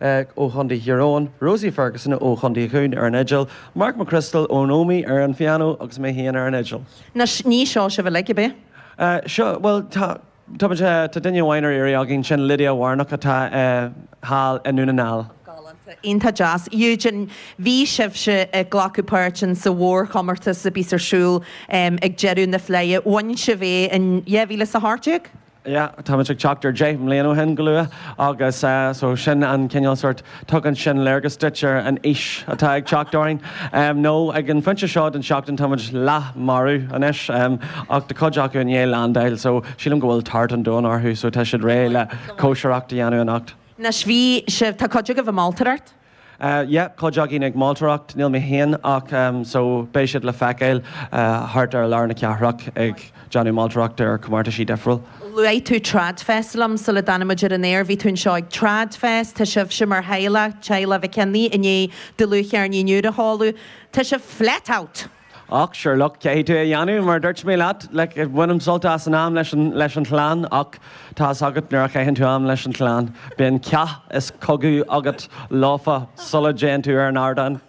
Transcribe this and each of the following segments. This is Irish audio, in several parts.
ó Chontae Thír Eoghain, Rosie Ferguson ó Chontae Dhún ar an fhidil, Mark McCrystal ón Ómaigh ar an phianó agus mé féin ar an fhidil. Nó ní seo sibh uilig, ab é? Seo, bhuel, tá, tá, tá duine amháin ar iarraidh againn, sin Lydia Warnock atá thall i nDún na nGall. Galánta, iontach deas. Eugene, bhí sibhse ag glacadh páirt in sa mhórchomórtas a bíos ar siúl ag deireadh na Fleidhe, bhain sibh é in dhá mhíle is a hocht déag? yeah, táimid ag teacht ar deich mbliana ó shin go luath agus so sin an cineál sort, tugann sin léargas duit ar an aois atá ag teacht orainn. Nó ag an phointe seo den seachtain táimid leath marbh anois ach tá cuid acu i ndiaidh landáil so sílim go bhfuil tart an domhain orthu so tá siad réidh le cóisireacht a dhéanamh anocht. Anois bhí sibh, tá cuid agaibh ag moltóireacht? yeah cuid againn ag moltóireacht, níl mé féin ach em so beidh siad le feiceáil thart ar lár na cathrach ag déanamh moltóireachta ar comórtaisí difriúil. luaigh tú TradFest liom sula dtáinig muid ar an aer, bhí tú anseo ag TradFest, tá sibhse mar theaghlach, teaghlach Mhic Cionnaith, i ndiaidh dlúthcheirnín úr a sheoladh, tá sibh flat out! Och, sure, look, caithfidh tú é a dhéanamh, mar a dúirt mé leat, like, bainim sult as an am leis an, leis an chlann, och, tá fhios agat, nuair a chaitheann tú am leis an chlann, bíonn cath is cogadh agat leofa sula dtéann tú ar an ardán.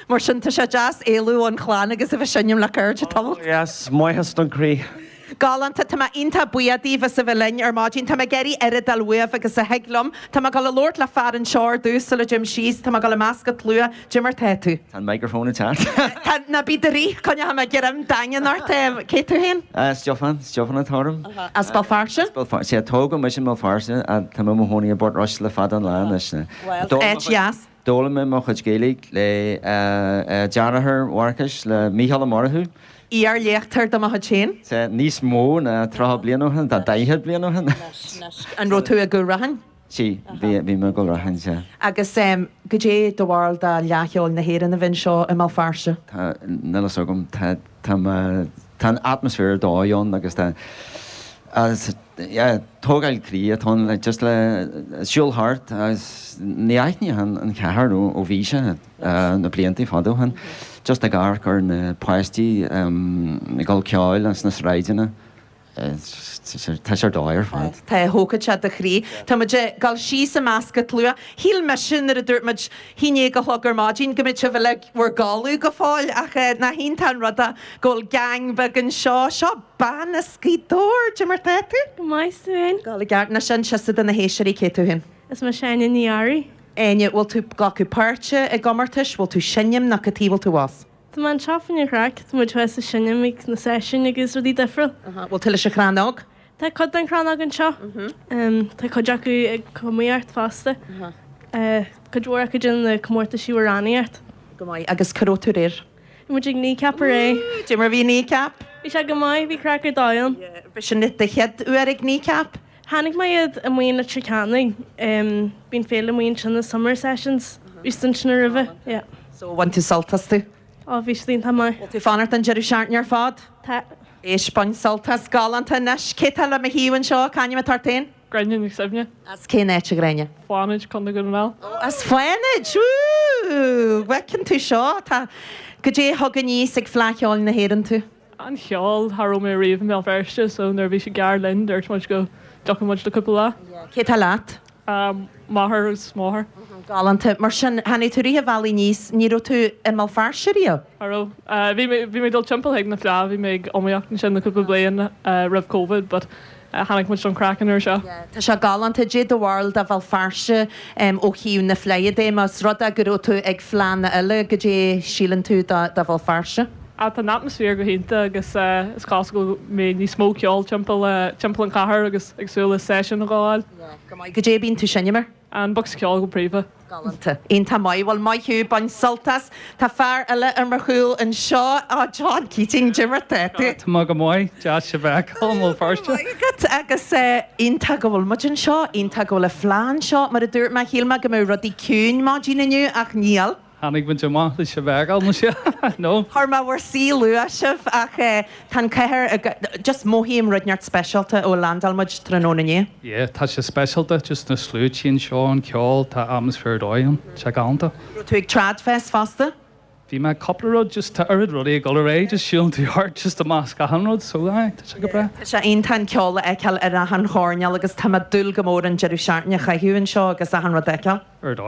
Mar sin, tá sé deas éalú ón chlann agus a bheith seinm le cairde, tamall. Och, yes, maitheas don chroí. Galánta, Tá mé iontach buíoch díbh as a bheith linn ar maidin. Tá mé ag iarraidh oiread a fháil uaibh agus a thig liom. Tá mé ag dul a labhairt le fear anseo ar dtús sula dtéim síos. Tá mé ag dul i measc an tslua. Goidé mar tá tú? Tá an micreafón ag teacht. Tá, ná bí buartha. Coinneoidh mé greim daingean ort. Cé tú féin? Stiofán, Stiofán atá orm. As Béal Feirste? As Béal Feirste, yeah. Tógadh mise i mBéal Feirste ach tá mé i mo chónaí i bPort Rois le fada an lá anois. Bhuel, áit dheas. D'fhoghlaim mé mo chuid Gaeilge le deartháir Mharcais, le Mícheál Ó Murchú. Iar-léachtóir de mo chuid féin. Sea, níos mó ná tríocha bliain ó shin, tá daichead bliain ó shin. An raibh tú i gCúil Raithin? Sea, bhí mé i gCúil Raithin, sea. Agus goidé do bharúil de Fhleadh Cheoil na hÉireann a bheith anseo i mBéal Feirste? Tá, níl fhios agam, tá, tá mé. Tá an atmaisféar ar dóigh ann agus tá agus yeah tógáil croí atá ann le just le siúl thart agus ní aithneochainn an chathair ó ó bhí sé na blianta fadó shin just ag amharc ar na páistí ag gabháil ceoil ins na sráideanna tá sé ar dóigh ar fad. Tá, thógfadh sé do chroí. Tá muid ag dul síos i measc an tslua. Shíl mise nuair a dúirt muid haon déag a chlog ar maidin go mbeadh sibh uilig in bhur gcodladh go fóill ach nach iontach an rud go bhfuil gang beag anseo. Seo bean as Gaoth Dobhair! Goidé mar tá tú? Go maith, 's tú fhéin? Go le gart. Anois inis do na héisteoirí cé tú fhéin? Is mise Áine Ní Fhearraigh. Áine, bhfuil tú glacadh páirt i gcomórtais? Bhfuil tú seinm nó cad tuige bhfuil tú abhus? Tá mé anseo fá choinne an chraic, tá muid thuas ag seinm ag na seisiúin agus rudaí difriúil. An bhfuil tú leis an chrannóg? Tá cuid den chrannóg anseo. Tá cuid acu ag iomaíocht fosta. Cuid mhór acu sna comórtaisí amhránaíochta. Go maith. Agus cá raibh tú aréir? Bhí muid ag Kneecap aréir. Woo! Cad é mar bhí Kneecap? Bhí sé go maith, bhí craic ar dóigh ann. Yeah. B'shin do chéad uair ag Kneecap? Chonaic mé iad amuigh i Leitir Ceanainn. Bíonn féile amuigh ansin, na Summer Sessions. Bhí siad ansin aroimhe, yeah. So, bhain tú sult astu? Oh, bhí sé iontach maith. Bhfuil tú ag fanacht an deireadh seachtaine ar fad? Tá. Éist, bain sult as. Galánta. Anois, cé tá le mo thaobh anseo? C'ainm atá ort féin? Gráinne Nic Suibhne. As cén áit a Ghráinne? Fánaid, Contae Dhún na nGall. Oh, as Fánaid! Woo! Fánaid ann tú seo, tá. Goidé a thug aníos ag Fleadh Cheoil na hÉireann tú? an cheoil, Cha raibh mé riamh i mBéal Feirste so nuair a bhí sé gar dúinn dúirt muid go dtiocfadh muid le cúpla lá. yeah, cé tá leat? m'athair agus mo mháthair. Uh-huh, galánta. Mar sin, tháinig tú rith an bhealaigh aníos, ní raibh tú i mBéal Feirste riamh? Cha raibh. Bhí mé, bhí mé ag dul timpeall chuig na Fleadh, bhí mé ag iomaíocht ansin le cúpla bliain roimh Covid but Tháinig muid don chraic an uair seo. Tá sé galánta. Goidé do bharúil de Bhéal Feirste ó thaobh na Fleidhe de. Más rud é go raibh tú ag Fleadh eile goidé a shíleann tú de Bhéal Feirste. Ah, tá an atmaisféar go hiontach agus is cosúil go mbeidh níos mó ceoil timpeall an chathair agus ag súil le seisiún a dh'fháil. Go maith goidé a bhíonn tú ag seinm air. An bocsa ceoil go príomha. Galánta. Ian, Tá maith. Bhuel, maith thú. Bain sult as. Tá fear eile ar mo chúl anseo. Á, John Keating, cad é mar tá tú. Tá mé go maith. Deas thú a fheiceáil i mBéal Feirste. Go raibh maith agat. Agus iontach go bhfuil muid anseo. Iontach go bhfuil an fleá anseo. Mar a dúirt mé, shíl mé go mbeadh rudaí ciúin maidin inniu ach níl. Tháinig muid amach leis an bhfeighil, no sea, no? Bhí mé i mo suí luath ar maidin, ach eh, tá an chathair i go, just mothaím rud inteacht speisialta ó landáil muid tráthnóna inné. Yeah, tá sé speisialta, just na sluaite anseo, an ceol, tá atmosphere ar dóigh ann, tá sé galánta. Raibh tú ag TradFest fosta? Bhí mé, cúpla rud, just tá oiread rudaí ag dul ar aghaidh, just siúlann tú thart, just i measc achan rud, so aye, tá sé go breá. Tá sé iontach an ceol a fheiceáil ar achan choirnéal agus tá mé ag dúil go mór an deireadh seachtaine a chaitheamh anseo agus achan rud a fheiceáil. Ar dóigh.